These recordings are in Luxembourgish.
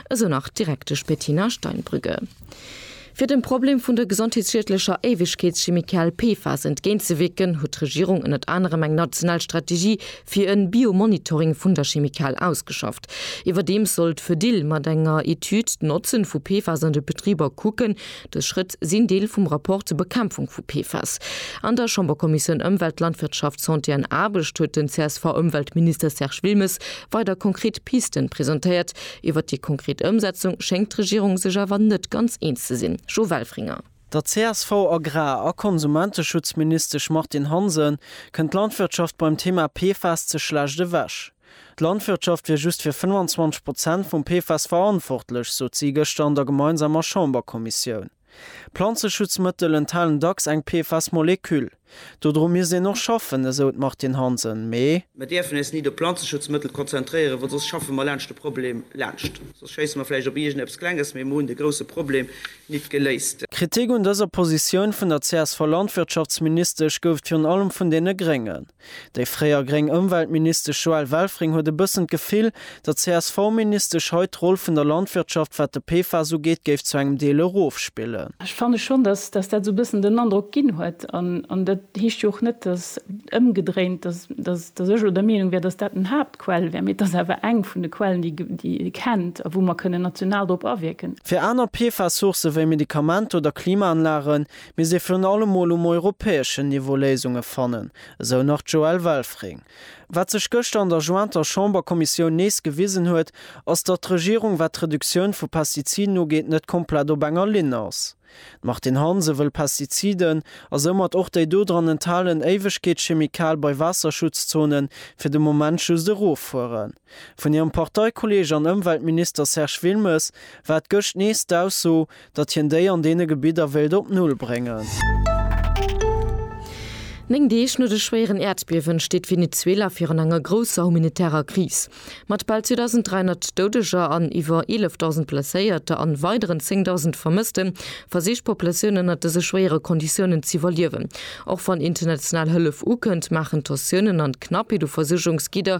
esou nach d'Direktesch Bettina Steinbrügge. Fir dem Problem vun der gesondheetsschiedlecher Éiwegkeetschemikal PFAS entgéintzewierken, huet d'Regierung ënnert anerem eng national Strategie fir e Biomonitoring vun der Chemikal ausgeschafft. Iwwerdeems soll d'Fedill mat enger Etüd d'Notzen vu PFAS an de Betriber kucken. Dës Schrëtt sinn Deel vum Rapport zur Bekämpfung vu PFAS. An der Chamberkommissioun Ëmwelt, Landwirtschaft, Santé an Aarbecht huet den CSV-Ëmweltminister Serge Wilmes weider konkret Pisten presentéiert. Iwwert déi konkret Ëmsetzung schéngt d'Regierung sech awer net ganz eens ze sinn. Jo Welfringer. Der CSV-Agrar a Konsumenteschutzministesch Martine Hansen kënnt d'Landwirtschaft beim Thema PFAS ze schlecht ewech. D'Landwirtschaft wier just fir 25 Prozent vum PFAS verantwortlech, sot si gëschter an der gemeinsamer Chamberkommissioun. Planzeschutzmëttel enthalen dacks eng PFAS-Moleküll. Dodru misst een och schaffen, esou d'Martine Hansen. Mee. Mer dierfen eis ni op Planzeschutzmëttel konzentréieren, well soss schaffe mer laanscht de Problem laanscht. Soss schéisse mer vläicht op iergend eppes Klenges, mee mer hunn de grousse Problem nit geléist. Kritik un dëser Positioun vun der CSV-Landwirtschaftsministesch gouf et virun allem vun deene Gréngen. Déi fréier gréng Ëmweltministesch Joëlle Welfring huet e bëssen d'Gefill, datt d'CSV-Ministesch hei d'Roll vun der Landwirtschaft, wat de PFAS ugeet, géif zu engem Deel erofspillen. Ech fanne schonn, datt dat esou e bëssen den Androck ginn huet. An dat heescht jo och net, datt, ëmgedréint, datt ech elo der Meenung wär, datt dat en Haaptquell wär, mee et ass awer eng vun de Quellen, déi ee kennt a wou mer kënnen national drop awierken. Fir aner PFAS-Sourcë wéi Medikamenter oder Klimaanlagen, Mir si virun allem mol um europäeschen Niveau Léisunge fannen, esou nach d'Joëlle Welfring. Wat sech gëschter an der jointer Chamberkommissioun nees gewisen huet, ass, datt d'Regierung, wat d'Reduktioun vu Pestiziden ugeet, net komplett op enger Linn ass. D'Martine Hansen wëll Pestiziden, a soumat och déi do dran enthalen Éiwegkeetschemikal bei Waasserschutzzonen, fir de Moment just eroffueren. Vun hirem Parteikolleeg an Ëmweltminister Serge Wilmes war et gëscht nees d'Ausso, datt hien déi an deene Gebidder wéilt op Null bréngen. Néng Deeg no de schwéieren Äerdbiewen steet Venezuela virun enger grousser humanitärer Kris. Mat bal 2.300 Doudeger an iwwer 11.000 Blesséierter an weideren 10.000 Vermësste versicht d'Populatioun ënnert dëse schwéiere Konditiounen z'iwwerliewen. Och wann international Hëllef ukënnt, maachen d'Tensiounen an d'Knappheet u Versuergungsgidder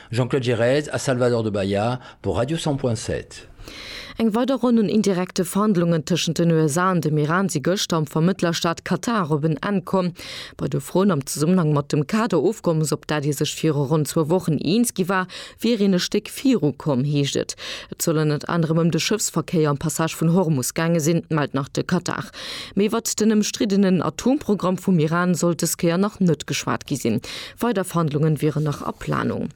Jean-Claude Girez a Salvador de Bahia pour Radio 100.7. Eng weider Ronn un indirekte Verhandlungen tëschent den USA an dem Iran si gëschter am Vermëttlerstaat Katar op en Enn komm. Bei de Froen am Zesummenhang mat dem Kader-Ofkommes, op dat ee sech viru ronn zwou Wochen eens gi war, wier een e Stéck viru komm, heescht et. Et soll ënnert anerem ëm de Schëffsverkéier am Passage vun Hormus gaange sinn, mellt nach de Katar. Mee iwwert den ëmstriddenen Atomprogramm vum Iran soll dës Kéier nach net geschwat gi sinn. Weider Verhandlungen wieren nach a Planung.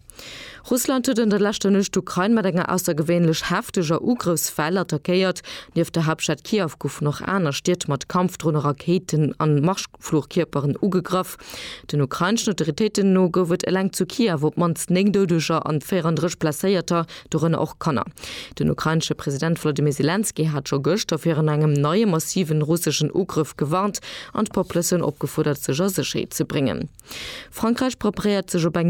Russland huet an der leschter Nuecht d'Ukrain mat enger aussergewéinlech hefteger Ugrëffswell attackéiert. Nieft der Haaptstad Kiew goufen och aner Stied mat Kampfdronen, Rakéiten an Marschflugkierperen ugegraff. Den ukraineschen Autoritéiten no gouf et eleng zu Kiew op d'mannst 9 Doudeger an 34 Blesséierter. dorënner och Kanner. Den ukrainesche President Volodymyr Selenskyj hat scho gëschter virun engem neie massiven russeschen Ugrëff gewarnt an d'Populatioun opgefuerdert, sech a Sécherheet ze bréngen. Frankräich preparéiert sech op eng